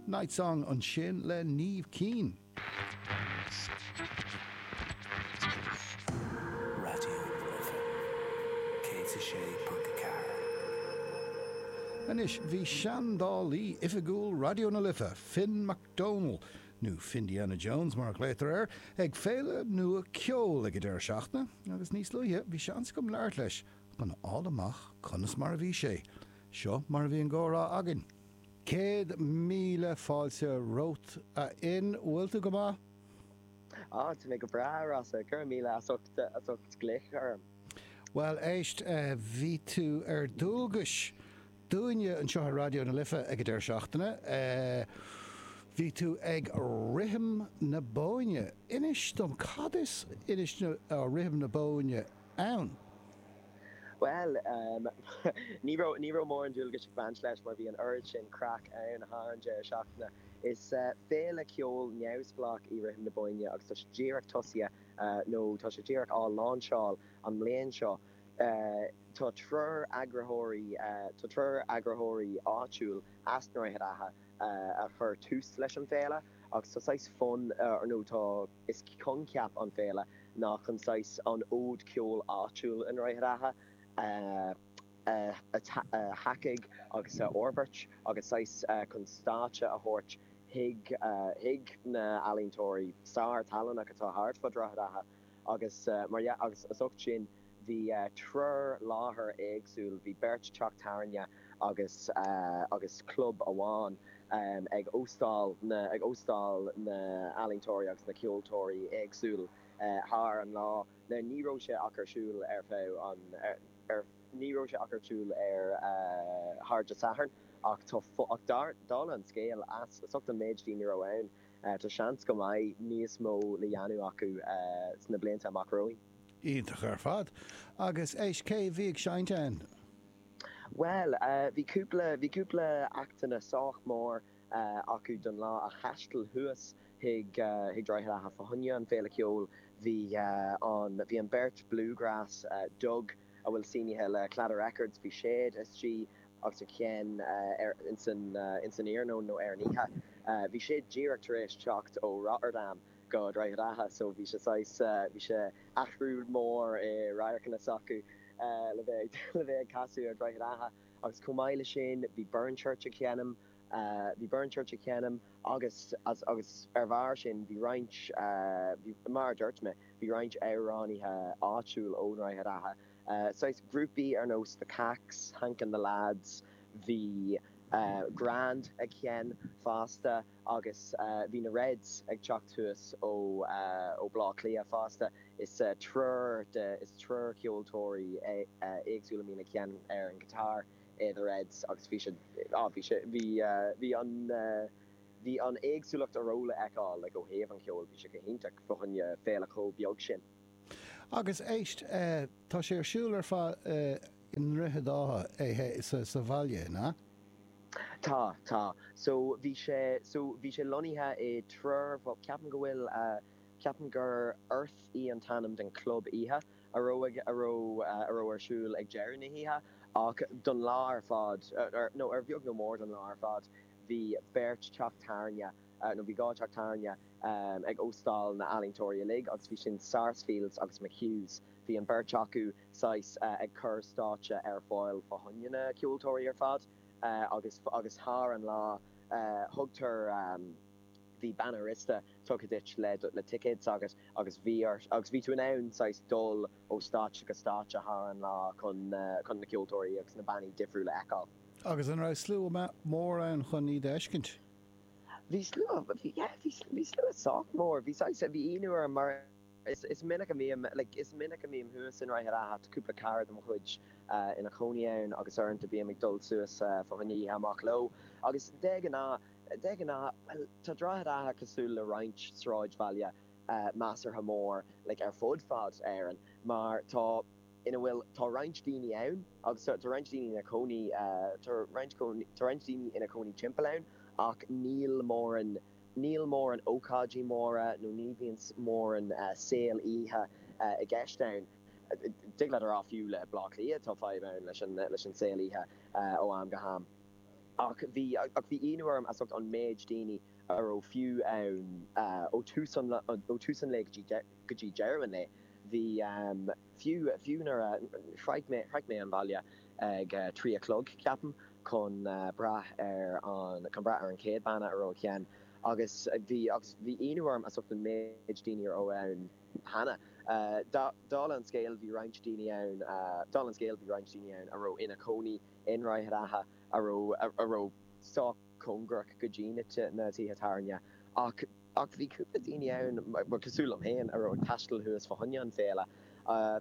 Night Song ansin le Niamh Keane. Raidió na Life 106.4. Anois bhí seandálaí oifigiúil Raidió na Life, Finn McDonnell, nó Findiana Jones mar a ghlaotar air, ag féile nua ceoil ag an deireadh seachtaine agus níos luaithe bhí seans agam labhairt leis chun a fháil amach conas mar a bhí sé Seo mar a bhí an gcomhrá againn. Céad míle fáilte romhat, a Fhinn. Bhfuil tú go maith? Á, tá mé go breá, a Rossa. Go raibh míle as ucht glaoch orm. Bhuel, éist, bhí tú ar dualgais dúinne anseo ar Raidió na Life ag an deireadh seachtaine. Bhí tú ag Rithim na Bóinne. Inis dom, cad is Rithim na Bóinne? ann? Bhuel, ní raibh ní raibh mórán dualgais ag baint leis mar bhí an oiread sin craic ann thar an deireadh seachtaine. Is féile ceoil neamhspleách í Rithim na Bóinne agus tá sé díreach tosaithe, nó tá sé díreach á láinseáil an mbliain seo. Tá triúr eagraitheoirí, tá triúr eagraitheoirí áitiúil as Droichead Átha a chuir tús leis an bhféile agus tá saghas fonn, nó tá, Is coincheap an féile ná chun saghas an fhód ceoil áitiúil i nDroichead Átha a thacú agus a fhorbairt agus saghas chun stáitse a thabhairt chuig na h-ealaíontóirí sárthallannach atá thart fud Droichead Átha agus mar gheall agus as ucht sin bhí triúr láthair éagsúil, bhí beirt teach tabhairne agus agus club amháin ag óstáil na ag óstáil na n-ealaíontóirí agus na ceoltóirí éagsúil thar an lá. Now ní raibh sé ach ar siúl ar feadh an ar ní raibh sé ach ar siúl ar thar de Sathairn ach tá ach dar dála an scéil as as ucht an méid daoine a raibh ann tá seans go mbeidh níos mó le dhéanamh acu sna blianta amach romhainn. Iontach ar fad. Agus éist cé bhí ag seinnt ann? Bhuel, bhí cúpla, bhí cúpla actanna sách mór acu don lá a thaisteal thuas chuig, chuig Droichead Átha fá choinne an féile ceoil. Bhí an, bhí an beirt bluegrass, Dug a bhfuil sínithe le Claddagh Records, bhí siad istigh agus ag seinm ar, insan, insan iarnóin nó ar an oíche. Bhí siad díreach tar éis teacht ó Rotterdam. go Droichead Átha so bhí sé saghas bhí sé athrú mór i radharcanna s'acu le bheith le bheith ag casadh ar Dhroichead Átha agus chomh maith le sin bhí Burn Church ag seinm bhí Burn Church ag seinm agus as agus ar bharr sin bhí roinnt bhí mar a dúirt mé bhí roinnt amhránaithe áitiúil ó Dhroichead Átha saghas grúpaí ar nós The Kaks, Hank and the Lads bhí Grand ag seinm fosta. Agus bhí na Reds ag teacht suas ó Bhaile Átha Cliath fosta. Is triúr de, is triúr ceoltóirí éagsúil a mbíonn ag seinm ar an guitar i The Reds agus bhí siad, á, bhí sé, bhí, bhí an, bhí an éagsúlacht a raibh le fheiceáil, like, ó thaobh an cheoil, bhí sé go hiontach fá choinne féile chomh beag sin. Agus éist, an bhfuil sé ar siúl ar fad i nDroichead Átha, thuas sa bhaile, na? Tá, tá. So, bhí sé, so, bhí sé lonnaithe i dtriúr, bhuel, ceapaim go bhfuil, ceapaim gur Earth í an t-ainm den chlub oíche a raibh, a raibh, a raibh ar siúl ag deireadh na hoíche ach don lá ar fad, nó ar bheag nó mór don lá ar fad, bhí beirt teach tábhairne. nó bhí dhá teach tábhairne ag óstáil na n-ealaíontóirí uilig agus bhí sin Sarsfields agus McHughs. Bhí an beirt acu saghas ag cur stáitse ar fáil fá choinne na ceoltóirí ar fad agus agus thar an lá thugtar bhí banna riosta tugtha duit le le ticéad s'agat agus bhí ort agus bhí tú in ann saghas dul ó stáitse go stáitse thar an lá chun na chun na ceoltóirí agus na bannaí difriúla a fheiceáil. Agus an raibh slua mór ann chun iad a fheiscint? Bhí slua, yeah, bhí, bhí slua sách mór. Bhí saghas, bhí ionadh orm mar is, is minic a mbím, like, is minic a mbím thuas i nDroichead Átha, tá cúpla cara de mo chuid ina chónaí ann agus uaireanta bím ag dul suas fá choinne oíche amach leo agus de ghnáth, de ghnáth, bhuel, tá Droichead Átha cosúil le roinnt sráidbhaile measartha mór, like, ar fud fad Éireann mar tá. ina bhfuil tá roinnt daoine ann agus tá roinnt daoine ina chónaí tá roinnt tá roinnt daoine ina chónaí timpeall ann ach níl móran níl móran ócáidí móra nó ní bhíonn móran saol oíche i gceist ann thig leat a rá fiú le Blá Cliath tá fadhb ann leis an leis an saol oíche ó am go ham ach bhí ach bhí ionadh orm as ucht an méid daoine a raibh fiú ann ó tús an ó tús an lae go dtí go dtí deireadh an lae, bhí, fiú, fiú nuair a, shroich mé, shroich mé an baile ag a trí a chlog, ceapaim, chun brath ar an, chun breathnú ar an chéad banna a raibh ag seinm agus bhí, agus bhí ionadh orm as ucht an méid daoine a raibh ann cheana. Dála an scéil, bhí roinnt daoine ann, dála an scéil, bhí roinnt daoine ann a raibh ina chónaí i nDroichead Átha a raibh, a raibh sách cóngarach go dtí na, na tithe tábhairne ach, Ach bhí cúpla daoine ann, cosúil liom féin, a raibh ag taisteal suas fá choinne an Féile,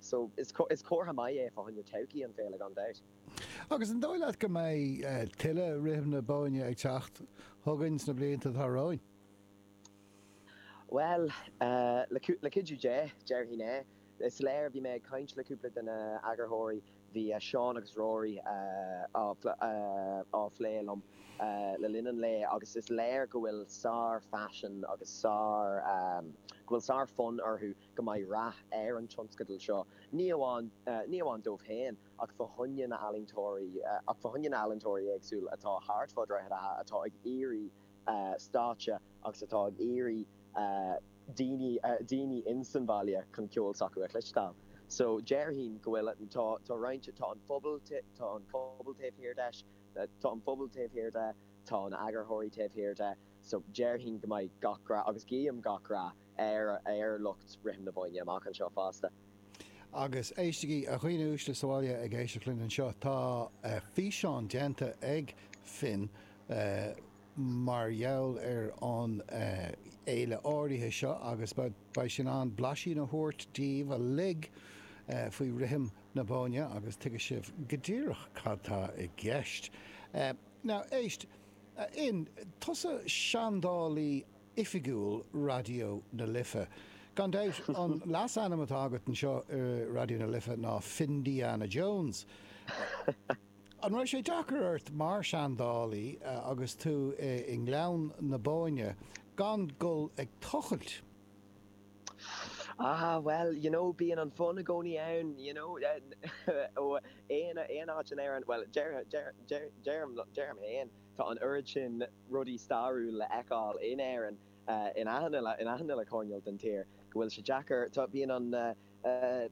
so is comhartha maith é fá choinne todhchaí an Féile gan dabht. Agus an dóigh leat go mbeidh tuilleadh Rithim na Bóinne ag teacht chugainn sna blianta atá romhainn? Bhuel, le cuidiú Dé, déarfainn é. Is léir, bhí mé ag caint le cúpla de na heagarthóirí, Bhí Seán agus Rory á phlé liom le linn an lae agus is léir go bhfuil sár-phaisean agus sár, go bhfuil sár-fhonn orthu go mbeidh rath ar an tionscadal seo, ní amháin, ní amháin dóibh féin ach fá choinne na n-ealaíontóirí, ach fá choinne na n-ealaíontóirí éagsúil atá thart fá Dhroichead Átha atá ag iarraidh stáitse agus atá ag iarraidh daoine, daoine in san bhaile chun ceol s'acu a chloisteáil. So déarfainn go bhfuil, tá roinnt, tá an phobal, tá an pobal taobh thiar de, tá an phobal taobh thiar de, tá na heagarthóirí taobh thiar de, so déarfainn go mbeidh gach rath, agus guím gach rath, ar lucht Rithim na Bóinne amach anseo fosta. Agus éistigí, a dhaoine uaisle sa bhaile ag éisteacht linn anseo, tá físeán déanta ag Finn mar gheall ar an fhéile áirithe seo agus beidh sé in ann blaisín a thabhairt daoibh uilig faoi Rithim na Bóinne agus tuigfidh sibh go díreach cad tá i gceist. Now, éist, a Fhinn, tusa seandálaí oifigiúil Raidió na Life. Gan dabht, an leasainm atá agat anseo i Raidió na Life ná Findiana Jones. An raibh sé deacair ort mar seandálaí agus tú i nGleann na Bóinne gan dul ag tochailt? Ah, bhuel, you know, bíonn an fonn i gcónaí ann, you know, aon áit in Éirinn, bhuel, deirim féin, Tá an oiread sin rudaí stairiúil le fheiceáil in Éirinn in achan uile coirnéal den tír go bhfuil sé deacair, tá, bíonn an,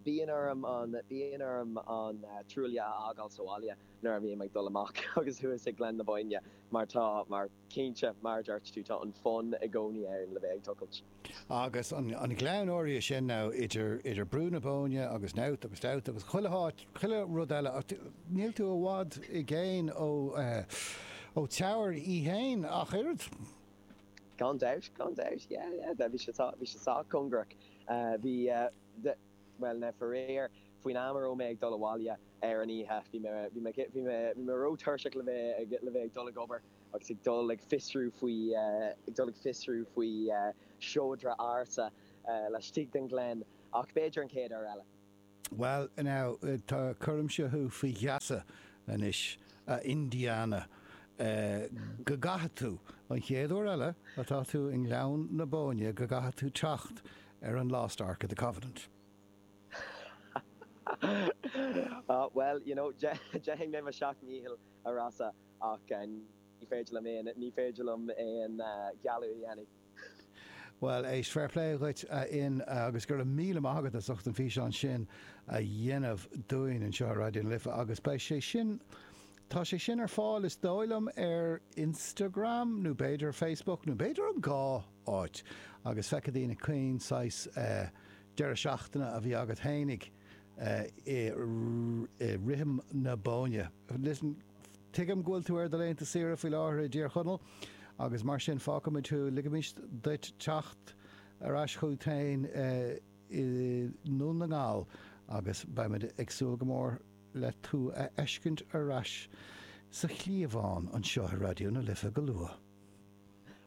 bíonn orm an, bíonn orm an trowel a fhágáil sa bhaile nuair a bhím ag dul amach agus thuas ag Gleann na Bóinne mar tá, mar, cinnte, mar a dúirt tú, tá an fonn i gcónaí ann le bheith ag tochailt. Agus an gleann áirithe sin now idir, idir Brú na Bóinne agus Knowth agus Dowth agus chuile háit, chuile rud eile, níl tú i bhfad i gcéin ó, ó Teamhair í fhéin ach oiread. Gan dabht, gan dabht, yeah, yeah, bhí sé, bhí sé sách cóngarach. Bhí, bhuel now faraor faoin am a raibh mé ag dul abhaile ar an oíche, bhí mé, bhí mé, bhí mé, bhí mé ró-tuirseach le bheith, le bheith ag dul ag obair. agus ag dul ag fiosrú faoi ag dul ag fiosrú faoi seodra ársa laistigh den Ghleann ach b'fhéidir an chéad uair eile. Bhal, now, tá, cuirimse thú faoi gheasa anois, a Indiana, go gcaithfidh tú, an chéad uair eile atá tú i nGleann na Bóinne, go gcaithfidh tú teacht ar an Lost Ark of the Covenant. Bhal, you know, déanfaidh mé mo sheacht ndícheall, a Rossa. ach ní féidir liom aon ní féidir liom aon gheallúint a dhéanamh. Bhuel, éist, fair play dhuit a Fhinn agus go raibh míle maith agat as ucht an físeán sin a dhéanamh dúinn anseo ar Raidió na Life agus beidh sé sin, tá sé sin ar fáil is dóigh liom ar Instagram nó b'fhéidir Facebook nó b'fhéidir an dhá áit agus feicfidh daoine cén saghas deireadh seachtaine a bhí agat fhéinig. i rithim na Bóinne. Listen, Tuigim go bhfuil tú ar do laethanta saoire faoi láthair i dTír Chonaill agus mar sin fágfaimid thú, ligimis duit teacht ar ais chugat féin i nDún na nGall agus beimid ag súil go mór le tú a fheiscint ar ais sa chliabhán anseo i Raidió na Life go luath.